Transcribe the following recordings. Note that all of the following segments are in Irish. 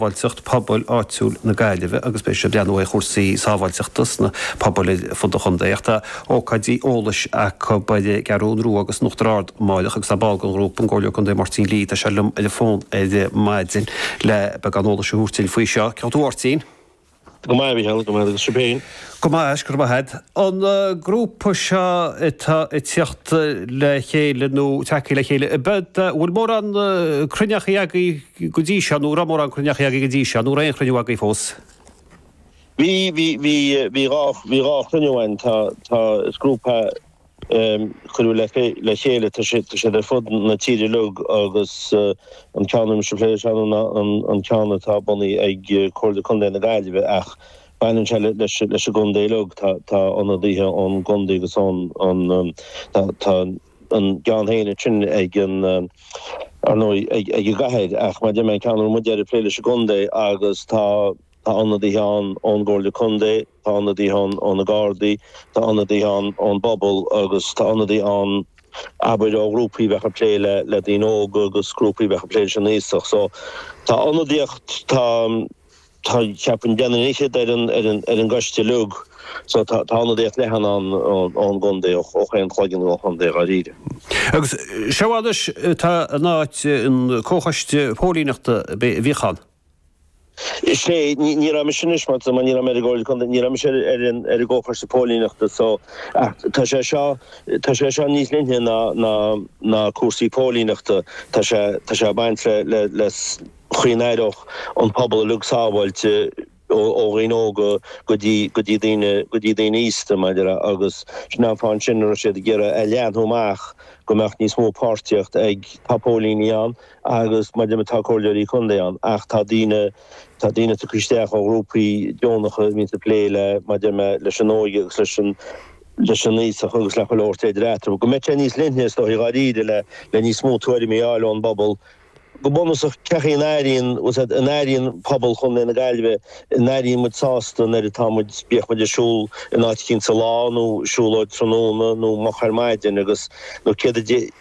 Sábháilteacht Pobail Áitiúil na Gaillimhe agus beidh siad ag breathnú ar chúrsaí sábháilteachta sna pobail ar fud an chontae. Ach tá ócáidí eolais acu ar an gCeathrú Rua agus in Uachtar Ard amárach agus tá ball den ghrúpa, an Comhairleoir Contae Máirtín Lee, tá sé liom ar an bhfón ar maidin le beagán eolais a thabhairt faoi seo. Cén chaoi a bhfuil tú a Mháirtín? Go maith, a Mhicheál, go maith agus sibh féin? Go maith, is go maith. An grúpa seo atá ag tíocht le chéile nó tagthaí le chéile, an bhfuil mórán cruinneachaí agaibh go dtí seo nó an raibh mórán cruinneachaí agaibh go dtí seo nó an raibh aon chruinniú agaibh fós? Bhí, bhí, bhí, bhí dhá, bhí dhá chruinniú againn. Tá, tá, is grúpa. cuireadh le chéile. Tá siad ar fud na tíre uilig agus an ceann a bhfuil mise ag plé leis ná an ceann atá bunaithe ag Comhairle Contae na Gaillimhe ach baineann sé leis an gcontae uilig. Tá ionadaithe ón gcontae agus ón Tá a gceann féin ansin ag an ar ndóigh ag an gcathair ach mar a deir mé an ceann a raibh muide ag plé leis an gcontae agus tá ionadaithe ann ón gComhairle Contae, Tá ionadaíocht ann ó na Gardaí, tá ionadaíocht ann ón bpobal agus tá ionadaithe ann, abair, ó ghrúpaí a bheadh ag plé le daoine óga agus grúpaí a bheadh ag plé leis na haosaigh. So, tá ionadaíocht, tá, tá, cheapfainn, duine is fiche ar an, ar an, ar an gcoiste uilig. So, tá, tá ionadaíocht leathan ann ón gcontae, ó, ó chaon chloigeann den chontae, dháiríre. Agus seo anois, tá sé in áit an comhchoiste póilíneachta a bhíodh ann. Is é, ní, ní raibh mise anois, mar mar ní raibh mé ar an gcomhairle contae, ní raibh mise ar, ar an, ar an gcomhchoiste póilíneachta so ach tá sé seo, tá sé seo níos leithne ná, ná, ná cúrsaí póilíneachta, tá sé, tá sé ag baint le, le, leis an gcaoi a n-aireodh an pobal uilig sábháilte ó, ó dhaoine óga go dtí, go dtí daoine, go dtí daoine aosta mar a déarfá agus sin an fáth ansin a raibh siad ag iarraidh é a leathnú amach go mbeadh níos mó páirtíocht ag, tá póilíní ann, agus mar a deir mé tá comhairleoirí contae ann ach tá daoine, tá daoine tugtha isteach ó ghrúpaí deonacha a bhíonn ag plé le, mar a deir mé, leis an óige agus leis an, leis an aosacht agus le chuile shórt idir eatarthu. Go mbeidh sé níos leithne is dóigh dháiríre le, le níos mó tuairimí a fháil ón bpobal. Go bunúsach cad é an airíonn, bhfuil siad, an airíonn pobal chontae na Gaillimhe, an airíonn muid sásta an oiread atá muid, bíodh muid ag siúl in áit éicint sa lá nó siúlóid tráthnóna nó moch ar maidin agus, nó céard a dé,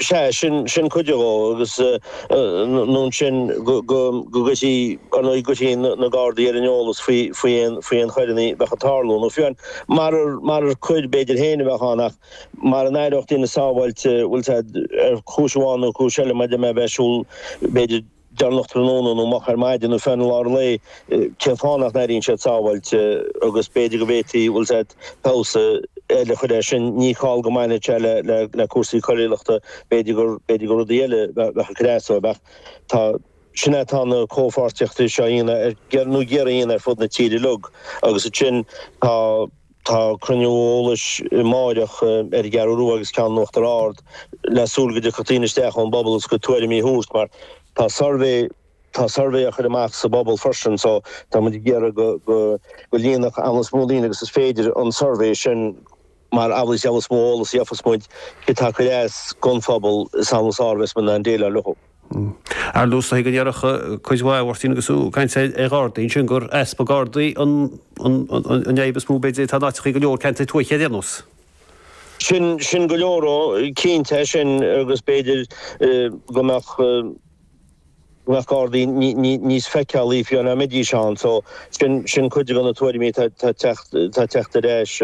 Sea, sin sin cuid dhó agus nó ansin go go go gcuirfí ar ndóigh gcuirfí na Gardaí ar an eolas faoi faoi aon faoi aon choireanna a bheadh ag tarlú nó fiú an mar mura coir b'fhéidir féin a bheadh ann ach mura n-aireodh daoine sábháilte bhfuil a fhios agat ar chúis amháin nó cúis eile mar a deir mé bheith ag siúl b'fhéidir déanach tráthnóna nó moch ar maidin nó fiú i lár an lae, cén fáth nach n-airíonn siad sábháilte agus b'fhéidir go bhféadfaí, bhfuil a fhios agat, feabhas eile a chur air sin. Ní call dó go mbainfeadh sé le le cúrsaí coiriúlachta, b'fhéidir gur b'fhéidir gur rudaí eile bheadh bheadh ag cur as dóibh ach sin é atá na comhpháirtíochtaí seo a dhéanamh ar nó ag iarraidh a dhéanamh ar fud na tíre uilig agus ansin tá Tá cruinniú eolais amáireach ar an gCeathrú Rua agus ceann in Uachtar Ard le súil go dtiocfadh daoine isteach ón bpobal agus go tuairimí a thabhairt mar tá suirbhé tá suirbhé á chur amach sa bpobal freisin so tá muid ag iarraidh go go go líonfadh an méid is mó daoine agus is féidir an suirbhé sin mar amhlaidh is amhlaidh is mó eolas a gheofas muid céard atá ag cur as gon phobal is amhlaidh is fearr a bheas muid in ann déileáil leo. Ar dtús, thuig an chuid mhaith a Mháirtín agus tú ag caint ar Ghardaí ansin gur easpa Gardaí an fhadhb is mó b'fhéidir atá in áiteacha i go leor ceantair tuaithe ar aon nós? Sin sin go leor dó, cinnte é sin agus b'fhéidir go mbeadh go mbeadh Gardaí níos feiceálaí faoi mar a bhídís ann so sin sin cuid de na tuairimí atá ag teacht ag teacht ar ais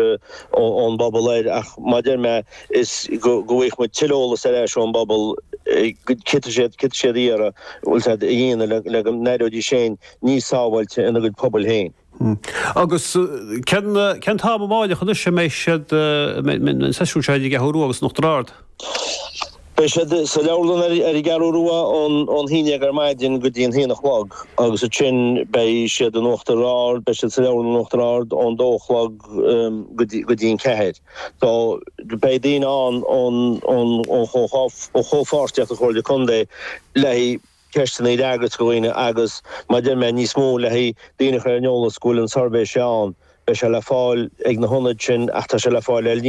ón bpobal air ach mar a deir mé is go bhfaighidh muid tuilleadh eolas ar ais ón bpobal céard atá siad ag iarraidh bhfuil a fhios agat a dhéanamh le go n-aireoidís féin níos sábháilte ina gcuid pobail féin. Agus cén t-am amárach anois a mbeidh siad an seisiún seo ar an gCeathrú Rua agus in Uachtar Ard? Beidh siad sa leabharlann ar an gCeathrú Rua ón haon dhéag ar maidin go dtí an haon a chlog agus ansin beidh siad in Uachtar Ard, beidh siad sa leabharlann in Uachtar Ard ón dó a chlog go dtí an ceathair. So, beidh daoine ann ón chomhpháirtíocht, ón gComhairle Contae, le haghaidh ceisteanna a fhreagairt do dhaoine agus, mar a deir mé, níos mó le haghaidh daoine a chur ar an eolas go bhfuil an suirbhé seo ann. Beidh sé le fáil ag na hionaid sin ach tá sé le fáil ar líne.